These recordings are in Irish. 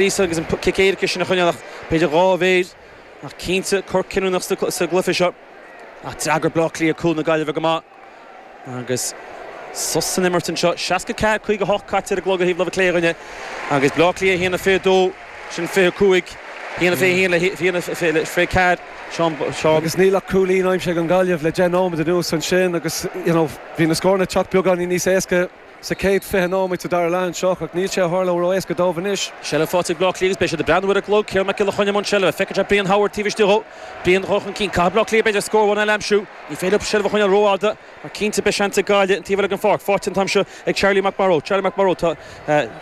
Íosa agus an cic éirice sin a choinneáil ach b'fhéidir dhá mhéir. Ach cinnte cor cinniúnach sa gcluiche seo. Ach d'fhreagair Bleá Cliath cúl na Gaillimhe go maith agus sos san imirt anseo. 64, 58 caite ar an gclog ar thaobh láimhe clé dhínn agus Bleá Cliath 1-22, sin 25, 1-21 le 1-24, Seán. Agus níl ach cúilín aimsithe ag an Ghaillimh le deich nóiméad anuas ansin agus, you know, bhí na scóranna ag teacht beagáinín níos éasca. sa chéad 20 nóiméad sa dara leath anseo, ach níl sé ag tharlú ró-éasca dóibh anois. Seilbh faighte ag Bleá Cliath agus beidh siad ag breathnú ar an gclog. Ciarán Mac Giolla Chainnigh i mbun seilbhe. Feiceann sé Brian Howard taobh istigh dhó. Brian ag dul chun cinn. Caithfidh Bleá Cliath b'fhéidir scór amháin eile a aimsiú. Ní féidir leo seilbh a choinneáil rófhada mar cinnte beidh seans ag Gaillimh an taobh eile den pháirc. Faighte an t-am seo ag Charlie McMorrow. Charlie McMorrow, Tá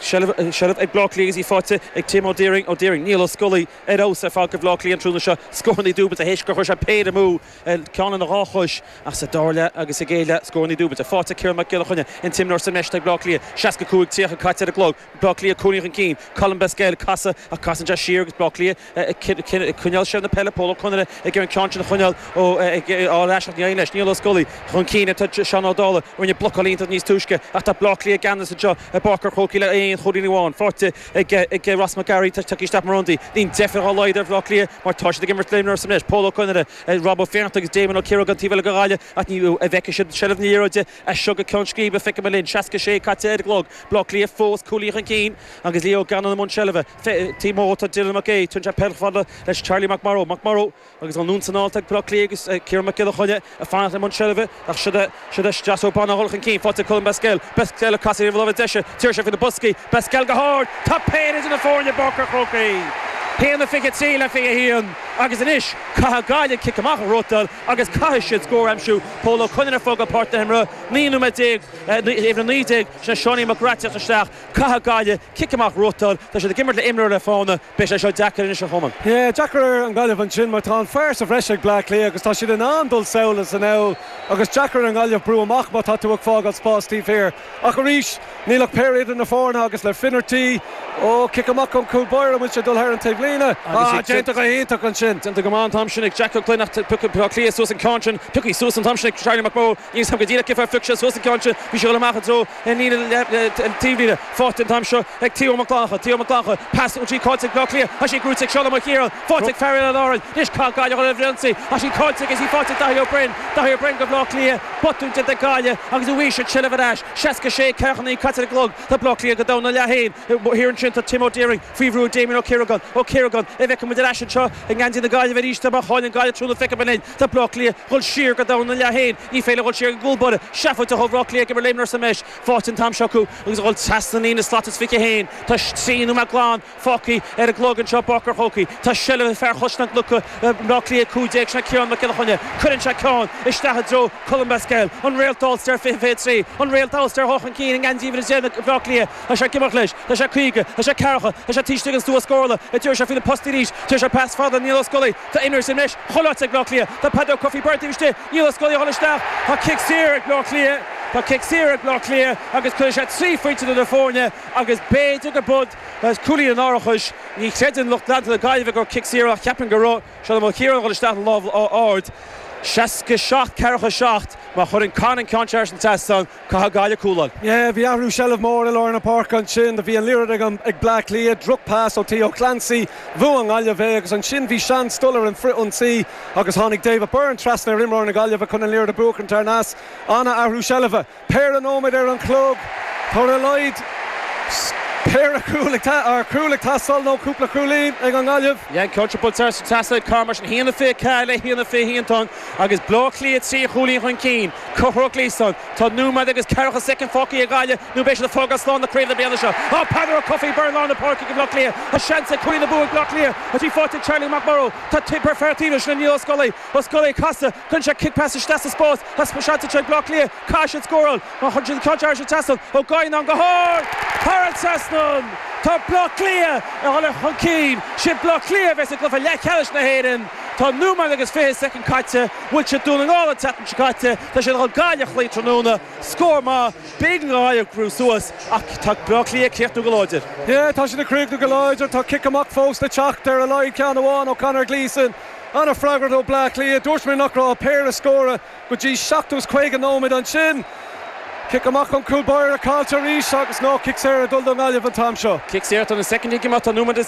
seilbh ag Bleá Cliath agus í faighte ag Tim Ó Diairinn. Ó Diairinn, Niall Ó Scolaí ar fheabhas ar fad do Bhleá Cliath an tráthnóna seo. Scórannaí dúbailte théis gur chuir sé péire amú. ceann lena dhá chois ach sa dara leath agus péire scórannaí dúbailte faighte Ciarán Mac Giolla Chainnigh an t-imreoir is measa ag Bleá Cliath, 65 30 caite ar an gclog, Bleá Cliath cúilín chun cinn, Colm Basquel ag casadh ach casann sé siar agus Bleá Cliath ag coinneáil seilbh na peile Pól Ó Conaire ag iarraidh an ceann sin a choinneáil ó a fháil ar ais ach ní éiríonn leis Niall Ó Scolaí chun cinn ar Seán Ó Dálaigh a rinne blocáil iontach níos túisce ach tá Bleá Cliath i gceannas anseo i bPáirc an Chrócaigh le aon chúilín amháin faighte ag Ross McGarry tar éis teacht mar ionadaí. Níl deifir dá laghad ar Bhleá Cliath mar tá siad ag imirt le imreoir sa mbreis anois, Pól Ó Conaire, Rob Ó Fiannachta agus Damien Ó Ciaragáin an taobh eile den bhaile ach ní bhfeicfidh siad seilbh na liathróide as seo go ceann scríbe, feicfimid linn. 66 caite ar an gclog. Bleá Cliath fós cúilín chun cinn agus Lee Gannon i mbun seilbhe. Taobh amuigh tá Dylan Mac Aodha, tugann sé peil leis Charlie McMorrow. McMorrow. Agus an Lún coinneáilte ag Bleá Cliath agus Ciarán Mac Giolla Chainnigh ag fanacht i mbun seilbhe, nach sioda siad a streasógbán ag dul chun cinn faighte ag Colm Basquel. Basquel ag casadh ar láimhe deise, téann sé faoi na postaí, Basquel go hard! Tá péire idir na foirne i bPáirc an Chrócaigh! 1:23 le 21 agus anois caithfidh Gaillimh cic amach a ghnóthachtáil agus caithfidh siad scór a aimsiú. Pól Ó Conaire ag fágáil páirc na himeartha, naoi nóiméad déag, uimhir a naoi déag, sin é Seáinín Mac Craith, ag teacht isteach. Caithfidh Gaillimh cic amach a ghnóthachtáil. Tá siad ag imirt le imreoir le fána. Beidh sé seo deacair anois a Chomáin. Yeah, deacair ar an nGaillimh ansin mar tá an fear sa bhreis ag Bleá Cliath agus tá siad in ann dul sall is anall agus deacair ar an nGaillimh brú amach má tá tú ag fágáil spás taobh thiar. Ach arís, níl ach péire idir na foirne agus le Finnerty, oh, cic amach ón gcúl báire, an bhfuil sé ag dul thar an taobhlíne? Ah, déanta go hiontach ansin. Déanta go maith an t-am sin ag Jack Glynn ach piocfaidh Bleá Cliath suas an ceann sin. Pioctha suas an t-am sin ag Charlie McMorrow. Níl 'fhios a'm go díreach cé fáth ar phioc sé suas an ceann sin. Bhí sé ag dul amach i dtreo na taobhlíne faighte an t-am seo ag Theo Mac Fhlannchadha Theo Mac Fhlannchadha pas uaidh. Caillte ag Bleá Cliath agus í gnóite ag Seán Ó Maoilchiaráin faighte ag fear Oileán Árann anois caithfidh Gaillimh dul ar an ionsaí ach tá sí caillte agus í faighte ag Daithí Ó Broin Daithí Ó Broin do Bhleá Cliath botún déanta ag Gaillimh agus uaidh sin seilbh ar ais 66 49 caite ar an gclog Tá Bleá Cliath go domhain ina leath féin thiar ansin Tá Tim Ó Direáin faoi bhrú ag Damien Ó Ciaragáin Ó Ciaragáin an bhfeicfidh muid ar ais anseo i ngeansaí na Gaillimhe arís má chailleann Gaillimh tráthnóna Feicim an Tá Bleá Cliath dhul siar go domhain ina leath fhéin. Ní féidir dhul siar go gcúl báire. Seafóid a thóg Áth Cliath ag imirt léimneach sa mbreis fáite an t-am seo acu agus a dhul trasna líne slat is fiche fhéin. Tá trí nóiméad glan fágtha ar an gclog anseo i bPáirc an Chrócaigh. Tá seilbh ag fear Chaisleán Cnucha Bhleá Cliath 15 sin é Ciarán Mac Giolla Chainnigh. Cuireann sé ceann isteach i dtreo Colm Basquel. An Réalt All-Star 20 23. An Réalt All-Star ag dul chun cinn i ngeansaí 11 Bhleá Cliath. Tá sé ag imeacht leis. Tá sé 50. Tá sé 40. Tá sé taobh istigh den stua scórála. Díríonn sé faoi na postaí arís. Tugann sé pas fada Niall Ó Scolaí. Tá imreoir sa mbreis chomh loite ag Bleá Cliath. Tá Peadar Ó Cofaigh Byrne taobh istigh. Niall Ó Scolaí ag dul isteach. Tá cic saor ag Bleá Cliath. Tá cic saor ag Bleá Cliath agus cuirfidh sé trí phointe idir na foirne agus b'fhéidir gurb é cúilín an árachais. Ní chreideann lucht leanta na Gaillimhe gur cic saor ach ceapaim go raibh Seán Ó Maoilchiaráin a dhul isteach le lámh ard. 67 47 má chuireann Con an ceann sin thar an trasnán. Cathal Gaelach Cualáin. Yeah, bhí athrú seilbh mór i lár na páirce ansin. Do bhí an liathróid ag an, ag Bleá Cliath, drochphas ó Theo Clancy, bhuaigh an nGaillimh é agus ansin bhí seans dul ar an frithionsaí agus tháinig David Byrne trasna ar imreoir na Gaillimhe chun an liathróid a bhuachaint thar nais. Ana athrú seilbhe. Péire nóiméad ar an gclog. Tá ar a laghad péire cúl ag ta, or cúl ag teastáil nó cúpla cúilín ag an nGaillimh. An ceann curtha trasna ag Con mar sin. Haon a fiche ceathair le haon a fiche haon. Tá an. Agus Baile Átha Cliath trí chúilín chun cinn, Conchúr Gleeson tá nóiméad agus ceathracha soicind fágtha ag Gaillimh nó beidh siad ag fágáil slán le craobh na bliana seo. Tá Peadar Ó Cofaigh Byrne i lár na páirce ag Baile Átha Cliath. Tá seans ag cúilín na bua ag Baile Átha Cliath tá sí fáite ag Charlie McMorrow. Tá tig perfeartino sin ag Niall Ó Scolaí. Ó Scolaí ag casadh. Cuireann sé cic pas isteach sa spás. Tá seans anseo ag Baile Átha Cliath. Caithfidh siad scóráil. Má chuireann siad an ceann sin thar an trasnán, Ó Gaoith in ann go hard. Thar an trasnán. Tá Baile Átha Cliath ag dhul chun cinn. Sé Baile Átha Cliath a bheas sa gcluiche leathcheannais na hÉireann. Tá nóiméad agus fiche soicind caite, bhuail siad Dún na nGall an tseachtain seo caite, tá siad chun Gaillimh a chloí tráthnóna, scór maith, b'éigean do Ghaillimh brú suas ach tá Baile Átha Cliath ag críochnú go láidir. Yeah, tá siad ag críochnú go láidir, tá cic amach fós le teacht, ar a laghad ceann amháin ó Conor Gleeson. An-fhreagracht ó Bleá Cliath, dúirt mé nach raibh ach péire scór acu go dtí 57ú nóiméad. Ansin, cic amach ón gcúl báire, caillte arís agus nó cic saor ag dul don nGaillimh an t-am seo. Cic saor, tá na soicindí ag imeacht, tá nóiméad agus.